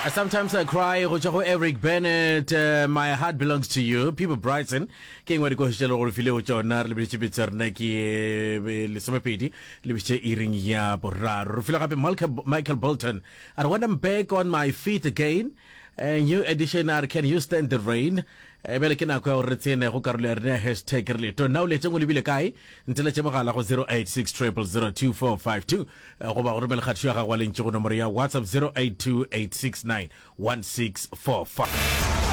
Uh, sometimes I cry go tšwa go Eric Bennett uh, My heart belongs to you People Brighton ke engwe dikogišo le gore file go tsona re lebeditše betsa rena ke eh, lesomepedi lebeditše iring ya boraro re file gape Michael Bolton I when I'm back on my feet again a eh, new edition are can you stand the rain E bjale ke nako ya gore re tsene go karolo ya rena ya hashtag re leto. Na o letše o lebile kae? Nteletše mogala go 0860002452 goba go romele kgatišo ya gago wa lentše go nomoro ya WhatsApp 0828691645.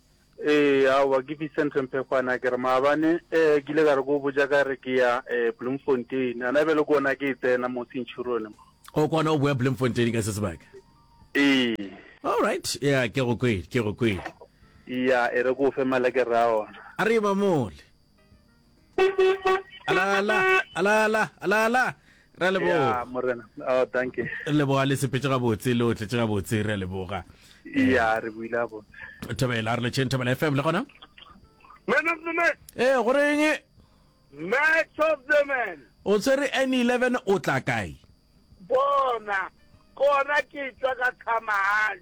Ee, aowa ke Vincent Rempekgwana ke re maabane um ke ile ka re ko botja ka re ke ya um Bloemfontein ana bjale ke ona ke e tsena mo centurion mo o kwana o boya Bloemfontein ka se sebaka ee all right ya ke go kwele ke go kwele ya e re ko fe malekere a ona a re ba mole alala alala alala re a leboga ya morena oh thank you re leboga le sepetse gabotse le o tletse gabotse re a leboga ya re buile a botse thobela re letšheng thobela fm le gona Man of the match, ee goreng match of the man. o tshwere n 11 o tla kae Bona, kona ke tšwa ka khamahane.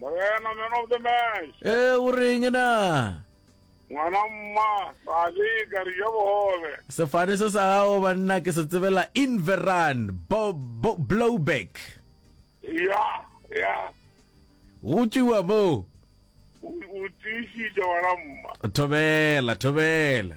Morena, man of the match. Eh, o reng na? Ngwana mma, ra leka re ja bogobe. Sefane se sa gago banna ke se tsebela Inveran bo, bo, Blowback. Ya, ya. Go tšiwa moo. O o tiišitše ngwana mma. Thobela, thobela.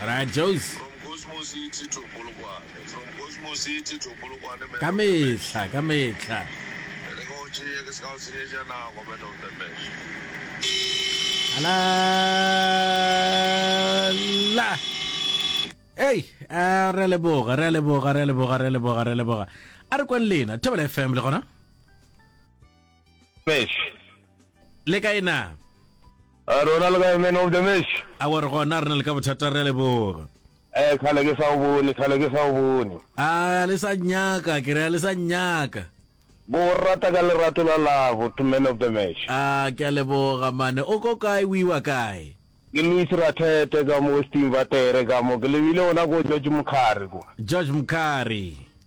Rajose. Ka mehla, ka mehla. Ala, la. Hey, a re leboga, re leboga, re leboga, re leboga, re leboga. A re kweng lena, Thobela FM le gona? Mesh. Le kae na? A rona le kae man of the mesh? A wa re gona re na le ka bothata re leboga. Eh khale ke sa o bone, khale ke sa o bone. A le sa nyaka, ke re le sa nyaka. Bo rata ka lerato la labo to man of the mesh. A ke a leboga mane, o ko kae o iwa kae? Ke Louis Rathete ka mo Western Vatere ka mo, ke lebile gona ko George Mokhari kwa. George Mokhari.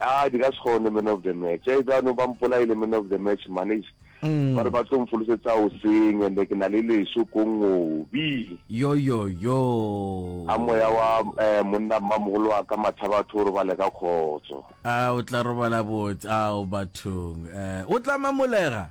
Aa di ka se kgone man of the match. Either ba no ba mpolaile man of the match man eish. Ba re ba tlo mfolosetsa o seng and ke na le leso ko ngobi. A moya wa eh monna mmamogolo wa ka Mathabatho o robale ka kgotso. Aa o tla robala botse ao bathong eh o tla mamolega.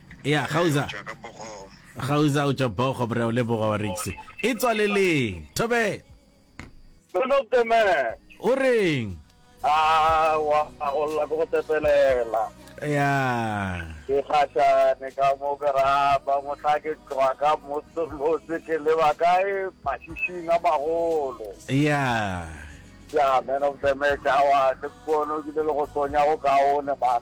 Ya, Gauza. Gauza o tšwa Bogo, Bra o leboga wa Rix. E tswaleleng. Thobe. Sono the man. O reng? Ah, wa go lla go tepelela. Ya. Ke kgatšane ka mo ke rapa mohla ke tloga ka motse ke leba kae mashišing a magolo. Ya. Ya, man of the match, awa, ke pono ke le go tsonya go kaone, man.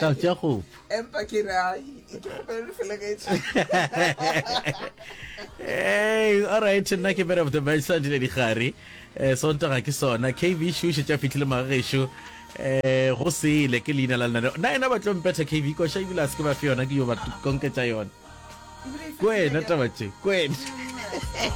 ka tša gopo empa ke re ai ke kgopelele felegetše hey all right nna ke man of the match sa dile digare eh sontaga ke sona kv shushe tša fitlhile magagešo eh go sele ke leina la lenaneo na ena ba tlo mpetha kv koša ebile a se ke ba fe yona ke yo ba konketša yona kwena taba tše kwena